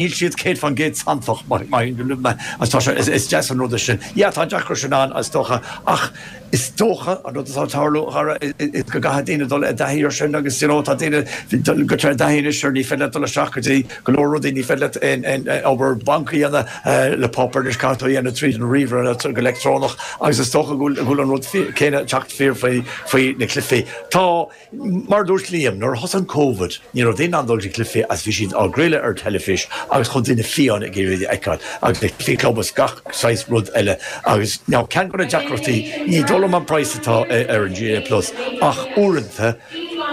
Níl siad 100% santach mar tá sé, is deas an rud é sin. Yeah, tá an deacracht sin ann is dócha ach is dócha an rud atá ag tarlú a chara is go gcaithfidh daoine dul i dtaithí ar sin agus you know tá daoine ag go i dtaithí anois ar ní féidir leat dul isteach go dtí go leor rudaí ní féidir leat aon aon obair banc a dhéanamh le páipéar anois caithfidh tú a dhéanamh tríd an ríomhaire nó go leictreonach agus is dócha go bhfuil an rud céanna ag teacht fíor faoi faoi na cluichí. Tá Mar a dúirt Liam, nuair a thosaigh an Covid, ní raibh daoine in ann dul go cluichí agus bhí siad á gcraoladh ar teilifís agus chuaigh daoine fiáine ag iarraidh iad a fheiceáil, agus le cluichí club is gach saghas rud eile agus now ceann de na deacrachtaí, ní dóigh liom an price atá ar an GAA Plus ach uaireanta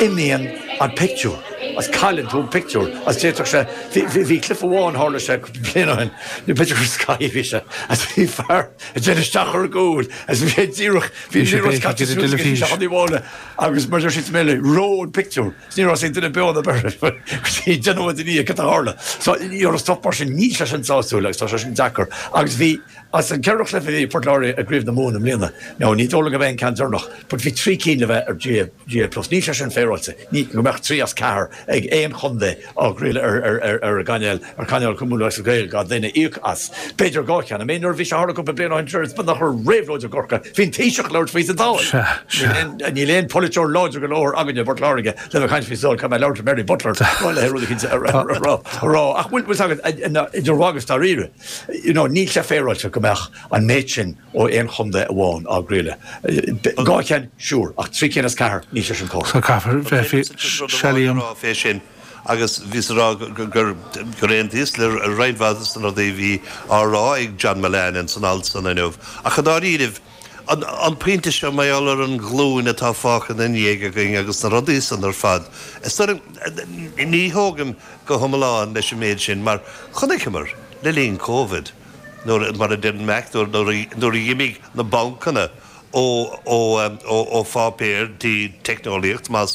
imíonn an pictiúr agus cailleann tú an pictiúr agus d'fhéadfadh sé, bhí, bhí cluiche amháin, tharla sé cúpla bliain ó shin, b'fhéidir gur Sky a bhí sé, agus bhí fear ag déanamh isteach ar an gcúl agus bhí sé díreach, bhí an liathróid caite suas agus bhí sé á thionlacan. Agus mar a deir siad sa mBéarla, reoigh an pictiúr. Is ní raibh a fhios ag aon duine beo ná beir leis, go dtí deich nóiméad i ndiaidh cad a tharla. So, bhí stop mar sin. Níl sé sin sásúil agus tá sé sin deacair. Agus bhí, as an gceithre chluiche a bhí ag Port Láirge i gCraobh na Mumhan i mbliana, now ní dóigh liom go mbeidh an ceann deireanach, but bhí trí cinn le bheith ar GAA, GAA Plus. Níl sé sin féaráilte, ní, go mbeadh trí as ceathair ag aon chontae. á gcraoladh ar an gcainéal, ar chainéal go mbeadh ar gach duine íoc as. B'fhéidir dhá cheann. Nuair a bhí sé, tharla cúpla bliain ó shin, tar éis ba bheag nach raibh réabhlóid i gCorcaigh, bhí an Taoiseach ag labhairt faoi sa Dáil. Sea, sea. Níl aon pholaiteoir láidir go leor againne i bPort Láirge le bheith ag caint faoi sa Dáil, caithfidh mé labhairt le Mary Butler nó le rud éicint a rá. Ach bhfuil fhios agat, idir mhagadh is dáiríre, you know, níl sé féaráilte go mbeadh an méid sin, ó aon chondae amháin á gcraoladh. Dhá cheann, sure, ach trí cinn as ceathair, níl sé sin cóir. So caithfear bheith féaráilte fé sin agus bhíos ag rá gur aontaíos le roinnt mhaith de na rudaí a bhí á rá ag John Mullane in san alt san inniu. Ach i ndáiríribh, an pointe seo, mar gheall ar an nglúin atá fágtha ina ndiaidh againn agus na rudaí san ar fad, is dóigh liom, ní thógaim go hiomlán leis an méid sin mar chonaiceamar le linn Covid, nuair, mar a deir an Mac, nuair a dh'imigh na bancanna ó pháipéar dtí teicneolaíocht, más.